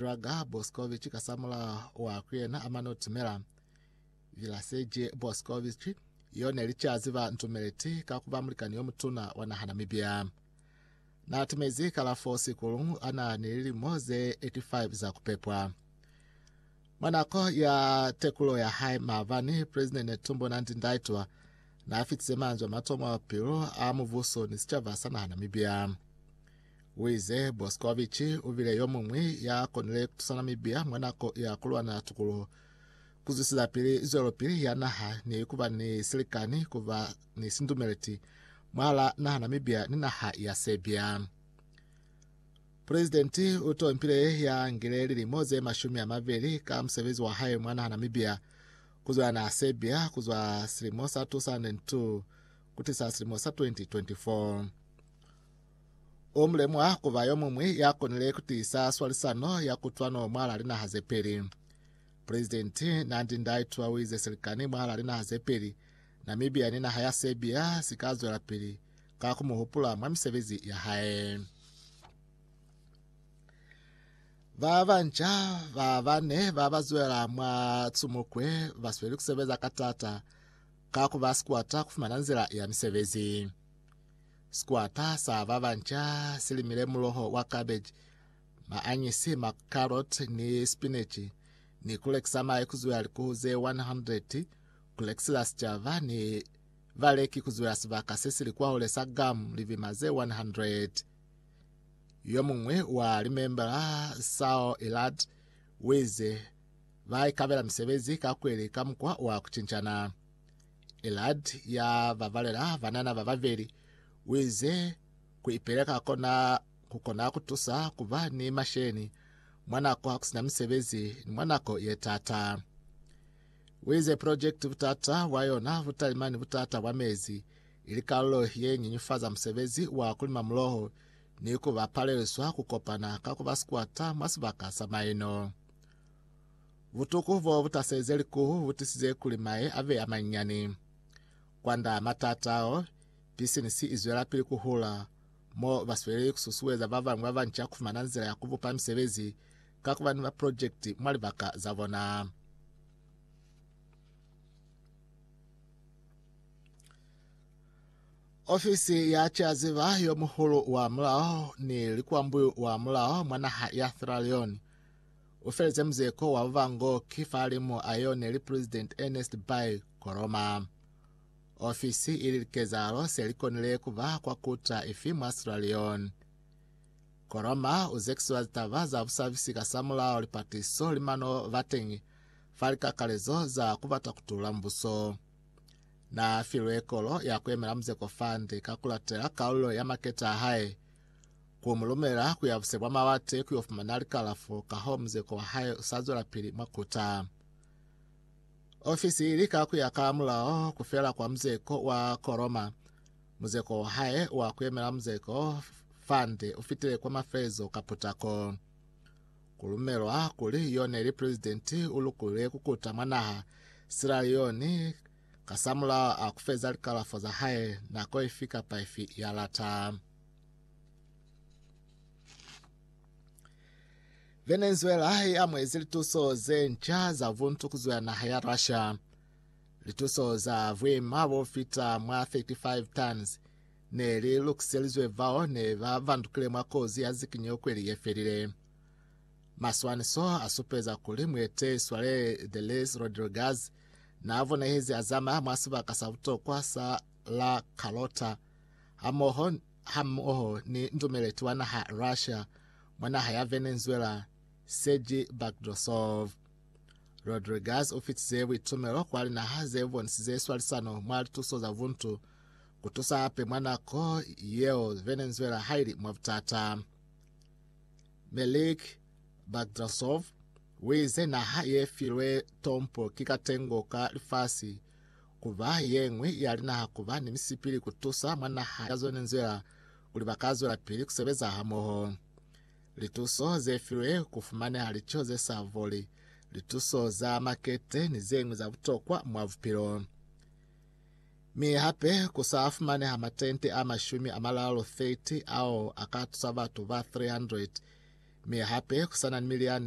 Draga Boskovic kasamula wa kuyena amanotimela Vilaseje Boskovic yo neli cazi ba ntumeleti ka kuba mulikani yo mutuna wa naha Namibia. Na timezi kalafo sikulu ana ni lilimo ze 85 za kupepwa. Mwa nako ya tekulo ya hae maabani, President Netumbo Nandi Ndaitwa na fitize manzwi a matomo a bupilo a mubuso ni sicaba sa naha Namibia. Wize Boskovic ubile yomuñwi ya konile kutusana Namibia mwa nako ya kulwana tukuluho, kuzwisila pili zwelopili ya naha ni kuba ni silikani kuba ni sindumeleti mwala naha Namibia ni naha ya Serbia. Presidenti utompile ya ngile lilimo ze mashumi amabili ka musebezi wa hae mwa naha Namibia kuzwela naha Serbia kuzwa silimo sa 2002 kutisa silimo sa 2024. U mulemwa ku ba yo muñwi ya konile ku tiisa swalisano ya kutwano mwalaa linaha ze peli. Presidenti Nandi Ndaitwah u ize silikani mwalaa linaha ze peli, Namibia ni naha ya Serbia, si ka zwelapili ka ku mu hupula mwa misebezi ya hae. Ba banca ba bane ba ba zwela mwa Tsumukwe ba sweli ku sebeza ka taata ka ku ba sikwata ku fumana nzila ya misebezi. Sikwata sa ba banca si limile muloho wa cabbage, maanyisi, macarrot ni spinach ni ku lekisa mahe ku zuya likuhu ze 100 ku lekisela sicaba ni baleki ku zuya sibaka se si li kwahule sa Guam, libima ze 100. Yo muñwi wa limembala, Sao Elad, u ize, Ba ikabela misebezi ka kweli ka mukwa wa ku cincana. Elad ya babalela banana ba babeli uize ku ipeleka kona kukona kutusa kuba ni masheni mwa nako hakusina misebezi ni mwa nako yetaata. Uize project butata bwa yona butalima ni butata bwa mezi ili kalulo yenyinyufaza musebezi wa kulima muloho ni kuba paleliswa kukopana ka kuba sikwata mwa sibaka sa maino. Butuku bo bu taselize likuhu bu tisize kuli mahe a be a manyinyani. Kwand'a matata ao, bisinisi i zwelapili ku hula, mo ba sweli ku susueza ba bañwi ba banca ku fumana nzila ya ku bupa misebezi ka ku ba ni maprojekiti mwa libaka za bona. Ofisi ya Ceaziba yo Muhulu wa Mulao ni Likwambuyu wa Mulao mwa naha ya Sierra Leone U feleze muzeko wa bubango ki fali mo a yone li President Ernest Bai Koroma. Ofisi ili likezahalo se li konile ku ba kwa kuta ifi mwa Sierra Leone. Koroma u zekisiwa litaba za busabisi ka sa mulao lipatiso li mano bateñi fa likakalezo za ku bata ku tula mubuso. Na filwe kolo ya ku yemela muzeko fande ka ku latela kalulo ya maketa a hae, Ku mu lumela ku ya buse bwa mawate ku yo fumana likalafo kahoo muzeko wa hae u sa zwelapili mwa kuta. Ofisi i lika ku ya ka mulao ku fela kwa muzeko wa ko Roma. Muzeko wa hae wa ku yemela muzeko Fund u fitile kwa mafelezo ka putako. Ku lumelwa kuli yo ne li Presidenti u lukulile ku kuta mwa naha Sierra Leone kasamulaho a ku feza likalafo za hae nako ifi kapa ifi ya lata. Venezuela i amuhezi lituso ze nca za vuntu ku zwa naha ya Russia. Lituso za vwima bo fita mwa 35 tons ne li lukiselizwe vao ne ba vandukile mwa kozi ya zikinyo kweli ye felile. Maswaniso a supeza kuli mwete Swale Delis Rodriguez na vonahezi a zamaya mwa sibaka sa butokwa sa La Carlota hamoho hamoho ni nzumeleti wa naha Russia mwa naha ya Venezuela Sergei Bagdasov. Rodriguez u fitize buitumelo kwa linaha ze bonisize swalisano mwa lituso za buntu, ku tusa hape mwa nako yeo Venezuela ha ili mwa butata. Melik Bagdasov u ize naha ye filwe tompo ki katengo ka lifasi kuba yeñwi ya linaha kuba ni misipili kutusa mwa naha ya zone nzila kuli ba ka zwelapili kusebeza hamoho. Lituso ze filwe kufumaneha lico ze sa voli, lituso za makete ni zeñwi za butokwa mwa bupilo. Mi hape ku sa fumaneha matente a mashumi a malalo 30 ao a ka tusa batu ba 300 mi hape ku sa na ni miliani